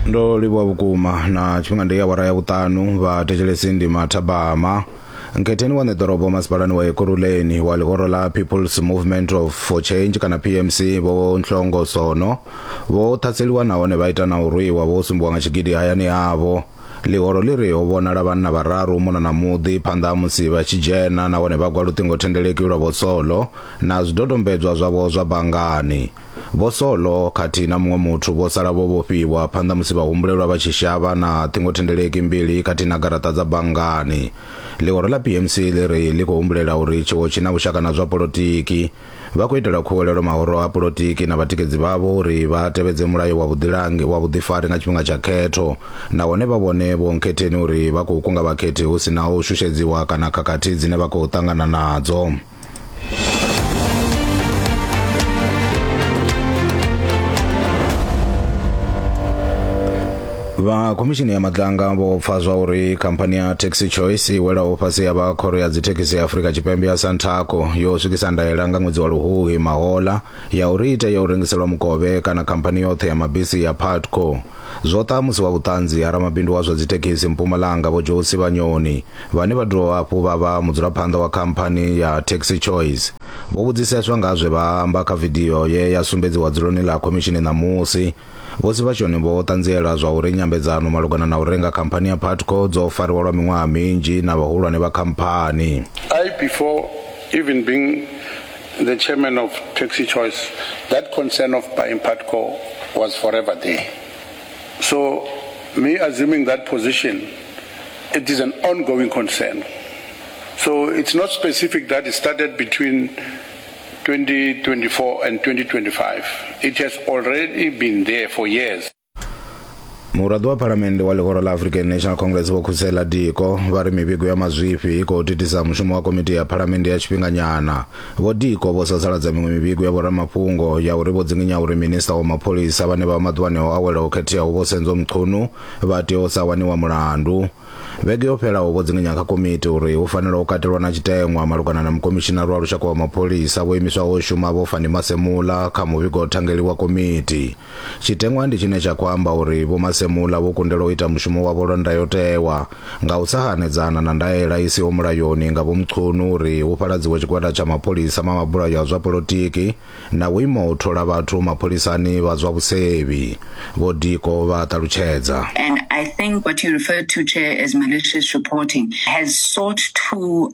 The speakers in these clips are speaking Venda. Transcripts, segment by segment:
ndo livhuwa vhukuma na tshifhinga ndi ya awara ya vhuṱanu vha thetshelesi ndi mathabama nkhetheni wa ṋeḓorobo masipalani wa ekuruleni wa ḽihoro ḽa peoples movement of for change kana pmc vho nhlongo sono vho ṱhaseliwa nahone vha ita na u rwiwa vho sumbiwa nga tshigidi hayani havho ḽihoro ḽi ri ho vhonala vhanna vhararu muna na muḓi phanḓa ha musi vha tshi dzhena nahone vha gwa luṱingothendeleki lwa vho solo na zwidodombedzwa zwavho zwa banngani Vho Solo khathihi na muṅwe muthu vho sala vho vhofhiwa phanḓa musi vhahumbulelwa vha tshi shavha na ṱhingothendeleki mbili khathihi na garaṱa dza banngani. Ḽihoro ḽa PMC ḽi ri ḽi khou humbulela uri tshiwo tshi na vhushaka na zwa polotiki. Vha khou itela khuwelelo mahoro a polotiki na vhatikedzi vhavho uri vha tevhedze mulayo wa vhuḓilangi wa vhuḓifari nga tshifhinga tsha khetho nahone vha vhone vhuonkhetheni uri vha khou kunga vhakhethi hu si na u shushedziwa kana khakhathi dzine vha khou ṱangana nadzo. vha khomishini ya madlanga vho pfa zwa uri khamphani ya taxi choice i welaho fhasi ya vha khoro ya dzithekhisi ya afurika tshipembe ya santaco yo swikisa ndaela nga ṅwedzi wa luhuhi mahola ya uri i tea u rengiselwa mukovhe kana khamphani yoṱhe ya mabisi ya patco zwo ṱaha musi wa vhuṱanzi ha ramabindu wa zwa dzithekhisi mpumalanga vho josi vhanyoni vhane vha dovha hafhu vha vha mudzulaphanḓa wa khamphani ya Taxi Choice, vho vhudziseswa nga zwe vha amba kha vidio ye ya sumbedziwa dzuloni ḽa khomishini ṋamusi. Vho Sivhashoni vho ṱanziela zwa uri nyambedzano malugana na u renga khamphani ya Putco dzo fariwa lwa miṅwaha minzhi na vhahulwane vha khamphani. I, before even being the chairman of Taxi Choice, that concern of buying Putco was forever there. So me assuming that position, it is an ongoing concern. So it's not specific that it started between 2024 and 2025. It has already been there for years. muraḓo wa phalamennde wa ḽihoro ḽa african national congress vho khusela diko vha ri mivhigo ya mazwifhi i khou thithisa mushumo wa komiti ya phalamennde ya tshifhinganyana Vho Diko vho sasaladza miṅwe mivhigo ya vhoramafhungo ya uri vho dzinginya uri minista wa mapholisa vhane vha vha maḓuvhani o awela ho khetheaho Vho Senzo Mchunu vha tea u sa waniwa mulandu. Vhege yo fhelaho vho dzinginya kha komiti uri hu fanela u katelwa na tshiteṅwa malugana na mukomishinari wa lushaka wa mapholisa vho imiswaho u shuma Vho Fannie Masemola kha muvhigo thangeli wa komiti. Tshiteṅwa ndi tshine tsha khou amba uri Vho Masemola vho kundelwa u ita mushumo wavho lwa ndayotewa nga u sa hanedzana na ndaela i siho mulayoni nga Vho Mchunu uri hu fhaladziwe tshigwada tsha mapholisa ma mabulayo a zwa polotiki na vhuimo ha u thola vhathu mapholisani vha zwa vhusevhi, Vho Diko vha a ṱalutshedza. And I think what you referred to, Chair, as malicious reporting has sought to.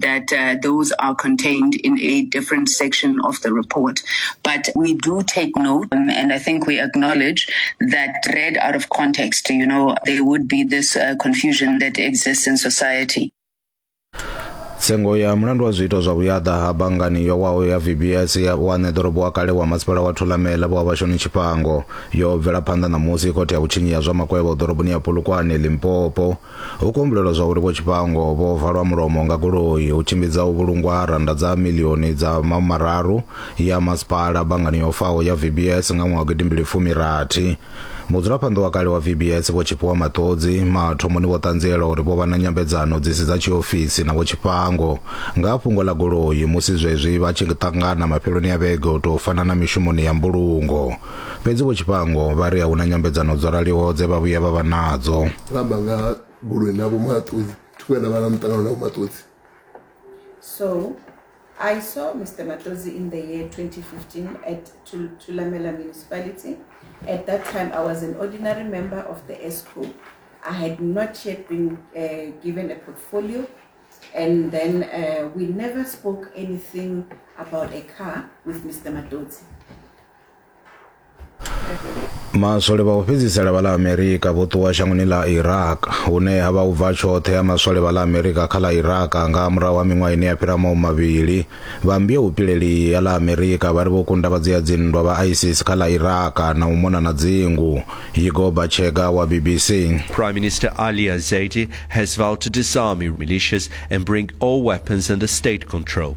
that uh, those are contained in a different section of the report. But we do take note, um, and I think we acknowledge that read out of context, you know, there would be this uh, confusion that exists in society. tsengo ya mulandu wa zwiito zwa vhuyaḓa ha bangani yo waho ya vbs ya wane ḓorobo wa kale wa masipala wa thulamela vho vhashoni tshifhango yo bvela phanḓa ṋamusi khothe ya vhutshinyi ya zwa makwevho ḓoroboni ya polokwane limpopo Ho kumbulelwa zwa uri Vho Tshifhango vho valwa mulomo nga goloi hu tshimbidza u vhulungwa ha rannda dza miḽioni dza mahumararu ya masipala banngani yo faho ya VBS nga ṅwaha wa gidimbili fumi rathi. Mudzulaphanḓa wa kale wa VBS Vho Tshifhiwa Maṱodzi mathomoni vho ṱanziela uri vho vha na nyambedzano dzi si dza tshiofisi na Vho Tshifhango nga ha fhungo ḽa goloi musi zwezwi vha tshi ṱangana mafheloni a vhege u tou fana na mishumoni ya mbulungo. Fhedzi Vho Tshifhango vha ri a hu na nyambedzano dzo raliho dze vha vhuya vha vha nadzo. Vha amba nga goloi na Vho Maṱudzi, thi vhuya nda vha na muṱangano na Vho Maṱudzi. So, I saw Mister Matodzi in the year 2015 at Thulamela Municipality. At that time, I was an ordinary member of the ESCO. I had not yet been uh, given a portfolio. And then uh, we never spoke anything about a car with Mr. Matodzi. maswole vha u fhedzisela vha ḽa amerika vho ṱuwa shangoni ḽa iraq hune ha vha u bva tshoṱhe ya maswole vha ḽa amerika kha ḽa iraq nga murahu ha miṅwaha ine ya fhira mau mavhili vha mmbia upileli ya ḽa amerika vha ri vho kunda vha dzia dzinndwa vha isis kha ḽa iraq na u mona na dzingu yigo bachega wa bbc prime minister ali azaidi has vowed to disarm militias and bring all weapons under state control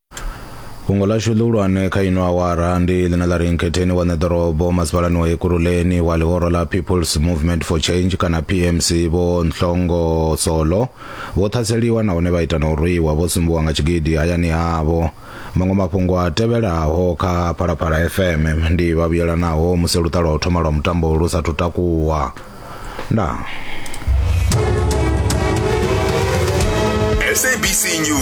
fhungo ḽashu ḽihulwane kha ino awara ndi ḽine ḽa ri nkhetheni wa ṋeḓorobo masipalani wa ekuruleni wa ḽihoro ḽa peoples movement for change kana pmc vho nhlongo solo vho ṱhaseliwa nahone vha ita na u rwiwa vho sumbiwa nga tshigidi hayani havho maṅwe mafhungo a tevhelaho kha phalaphala fm ndi vhavhuyelanaho musi luṱa lwa u thoma lwa mutambo lu sathu takuwa ndaa sabc news